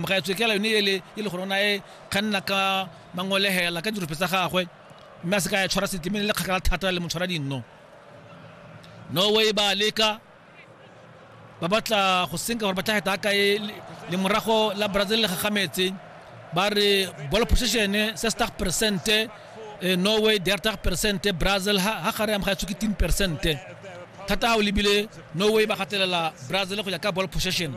Mogaetsho kela yone ele e le gore o na e kganna ka mangolehela ka dirope tsa gagwe mme a se ka ya tshwara setle mme le kgakala thata le motshwara dinno norway ba leka ba batla go senka gore ba tla heta ka e le morago la brazil le gagametse ba re ball possession 60 percent eh, norway 30 percent brazil ha ha gare ya mogaetsho ke 10 percent thata ha o lebile norway ba gatelela brazil go ya ka ball possession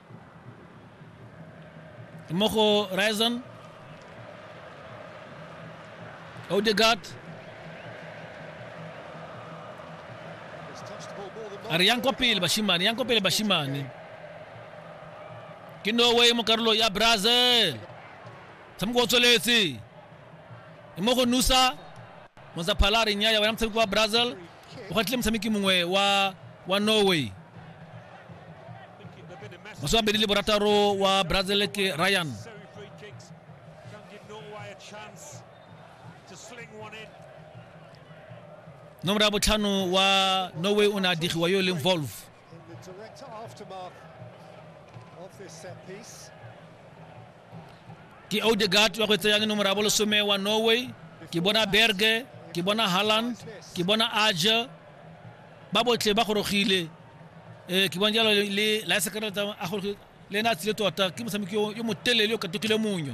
mo go Ryerson Odegaard a re yang kwa pele bashimane yang kwa pele bashimane ke norway mo karolo ya brazil motshameko o tsweletse e mo go nusa mozaphala a re nnyaya wena motshameko wa brazil o gatlile motshameki mongwe wa wa norway masome a mabedi le borataro wa brazil ke ryan Necessary free kicks. Don't give Norway a chance to sling one in. nomoro ya botlhano wa norway o ne a digiwa yo e leng volve In the direct aftermath of this set piece. ke odegaard wa go tseyang nomoro ya bolesome wa norway ke bona berge ke bona halland ke bona aja ba botlhe ba gorogile um ke bona jalo le- le laesekere a gorogile le ena a tsile tota ke motshameki yo- yo motelele yo katokile monyo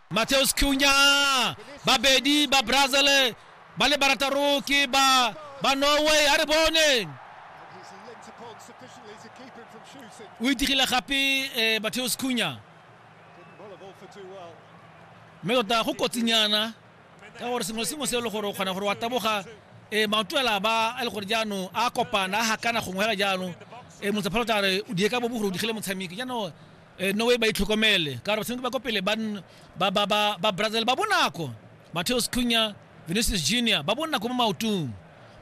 Mateus Cunha babedi ba Brazil ba le barataro ke ba ba Norway a re bone o itigile gape eh, Mateus Cunha mme tota go kotsinyana ka gore sengwe sengwe se e le gore o kgona gore wa taboga um maoto ela ba a le gore jaanong a kopana a gakana gongwe fela jaanong um eh, motsaphalotla re o die ka bobo gore o digile motshameki jaanong Eh, no way ba itlhokomele ka gore tshwanetse ba ko pele ba nn- ba- ba- ba- ba brazil ba bonako mateos cunya vinicius junior ba bonako mo maotong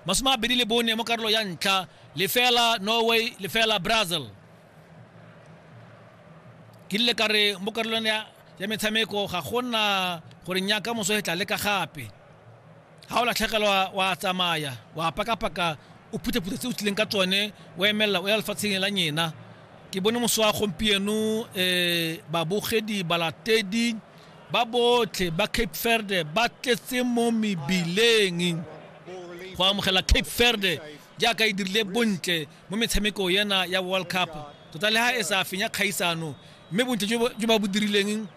masome a bedi le bone mo karolo ya ntlha lefela norway lefela brazil ke rile ka re mo karolong ya ya metshameko ga gona gore nyaka moso e tla leka gape ga o latlhegelwa wa tsamaya wa pakapaka o phuthaphutha tse o tlileng ka tsone o emelela o ya lefatsheng la nyena Ke bone moso wa gompieno babogedi, balatedi ba botlhe ba Cape Verde ba tletse mo mebileng go amogela Cape Verde jaaka e dirile bontle mo metshameko ena ya World Cup tota le ha e sa fenya kgaisano mme bontle jo ba bo dirileng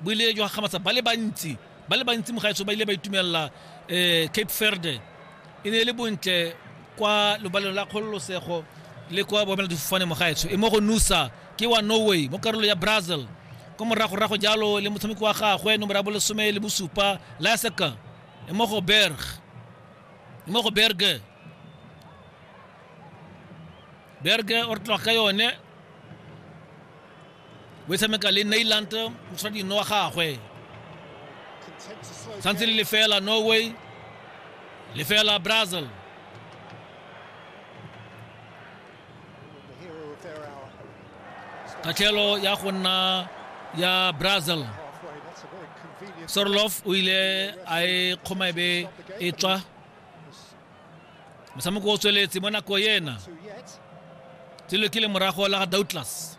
bo ile jwa gamatsa ba le bantsi. ba le bantsi mogaetso ba ile ba itumelela um cape verde e ne e le bontle kwa lobaleng la kgololosego le kwa boemela difofane mogaetsho e mo go nusa ke wa norway mo karolo ya brazil ko moragorago jalo le motshameki wa gagwe nomoro ya bolesome le bosupa laseka e mo go berg e mo go berge berge o re tloga ka yone o e tshameka le nailand mosadino wa gagwe santse le lefela norway lefela brazil katlhelo ya go nna ya brazil sorlof o ile a e kgoma e be e tswa motshameko o tsweletse mo nako ena tselo ke le morago la ga douglas